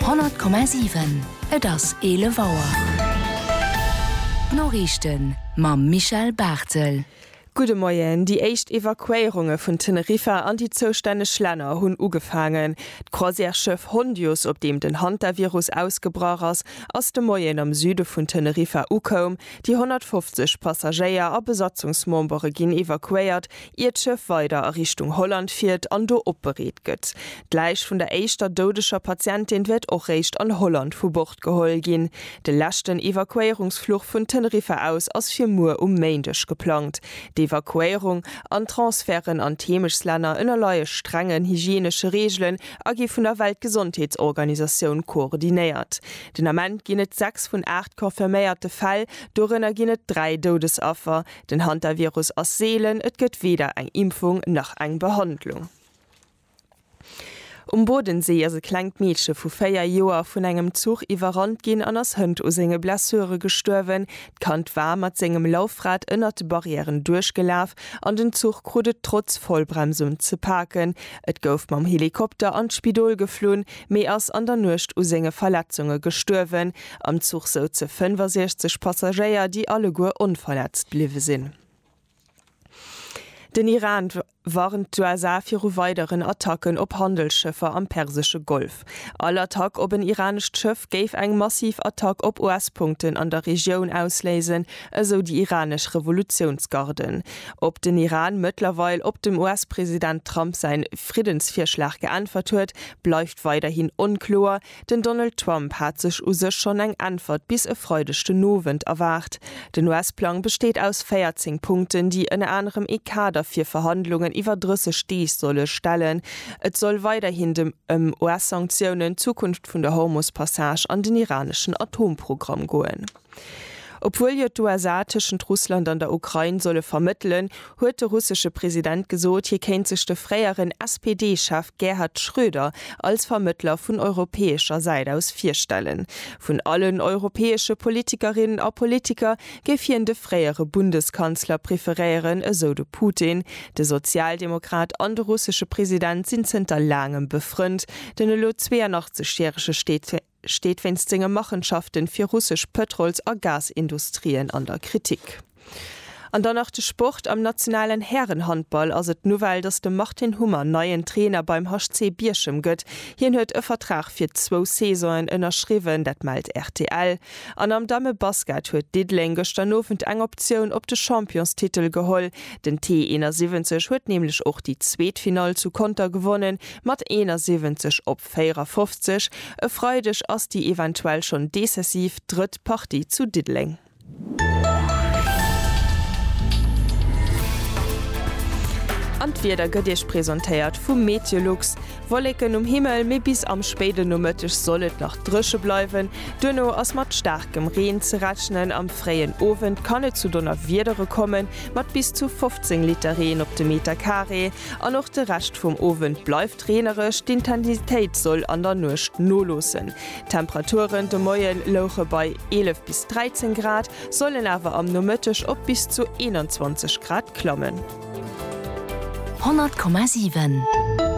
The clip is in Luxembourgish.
100,7 Et ass 11 Auer. D'Noriichten mam Michel Barthel. Gudde Moien. Déi éischt Evakuéierunge vun Teneriffa an déi zoustänneg Länner hunn ugefaangen. D'Croisièreschëff Hondius, op deem den Hantavirus ausgebrach ass, ass de Moien am Süde vun Teneriffa ukoum. Déi 150 Passagéier a Besatzungsmembere ginn evakuéiert, ier d'Schëff weider a Richtung Holland fiert an do opbereet gëtt. D'Läich vun der éischter doudeger Patientin wäert och réischt an Holland vu Bord geholl ginn. De leschten Evakuéierungsfluch vun Teneriffa aus ass fir muer um Méindeg geplangt. D'Evakuéierung an d'Transferten an d'Heemechtslänner ënnerleie strengen hygienesche Reegelen a gi vun der Weltgesondheetsorganisatioun koordinéiert. Den Ament ginn et sechs vun aacht confirméierte Fäll, dorënner ginn et dräi Doudesaffer. Den Hantavirus ass seelen, et gëtt weder eng Impfung nach eng Behandlung. Um Bodensee ass e klengt Meedche vu 4 Joer vun engem Zuch iwwerrannt ginn an ass hënt u senge Blessure gestuerwen. D'Kand war mat sengem Laufrad ënnert de Barrièren duerchgelaf an den Zuch krut et trotz Vollbremsung ze paken. Et gouf mam Helikopter an d'Spidol geflunn, mee ass an der Nuecht u senge Verletzunge gestuerwen. Am Zuch souze 65 Passagéier, déi alleguer onverletzt bliwwe sinn. Den Iran warnt d'USA viru weideren Attacken op Handelsschëffer am persesche Golf. All Attack op en iranescht Schëff géif eng massiv Attack op US-Punkten an der Regioun ausléisen, esou déi iranesch Revolutiounsgarde. Ob den Iran mëttlerweil op dem US-President Trump säi Friddensvirschlag geäntwert huet, bleift weiderhin onkloer. Den Donald Trump hat sech u sech schonn eng Äntwert bis e Freideg den Owend erwaart. Den US-Plang besteet aus 14 Punkten, déi ënner anerem ee Kader fir Verhandlungen iwwer 30 Deeg solle stellen. Et soll weiderhin dem ëm US-Sanktiounen, d'Zukunft vun der Hormus-Passage an den iraneschen Atomprogramm goen. Obwuel jo d'USA tëschent Russland an der Ukrain solle vermëttelen, huet de russesche President gesot, hie kéint sech de fréieren SPD-Chef Gerhard Schröder als Vermëttler vun europäescher Säit aus virstellen. Vun allen europäesche Politikerinnen a Politiker géif hien de fréiere Bundeskanzler preferéieren, esou de Putin. De Sozialdemokrat an de russesche President sinn zënter laangem befrënnt. Den elo 82 järege steet wéinst senge Machenschaften fir russesch Pëtrols a Gasindustrien an der Kritik. An dann nach de Sport, Am nationalen Härenhandball ass et d'Nouvelle, dass de Martin Hummer neien Trainer beim HC Bierchem gëtt. Hien huet e Vertrag fir zwou Saisonen ënnerschriwwen, dat mellt rtl. An am Dammebasket huet Diddeleng gëschter Nowend eng Optioun op de Championstitel geholl. Den T 71 huet nämlech och déi zweet Finall zu Conter gewonnen, mat 71 op. 54, E Freideg ass déi eventuell schonn decisiv drëtt Partie zu Diddeleng. An d'Wieder gëtt Iech presentéiert vu Meteolux. Wolleken um Himmel, mee bis am spéiden Nomëtteg soll et nach dréche bleiwen. Duerno ass mat staarkem Reen ze rechnen. Am fréien Owend kann et zu Donnerwiedere kommen, mat bis zu 15 Liter Reen op de Meterkaree. An och de Rescht vum Owend bleift. Reenereg, d'Intensitéit soll an der Nuecht noloossen. D'Temperaturen de Moie louche bei 11 bis 13 Grad, sollen awer am Nomëtteg op bis zu 21 Grad klammen. 100,7.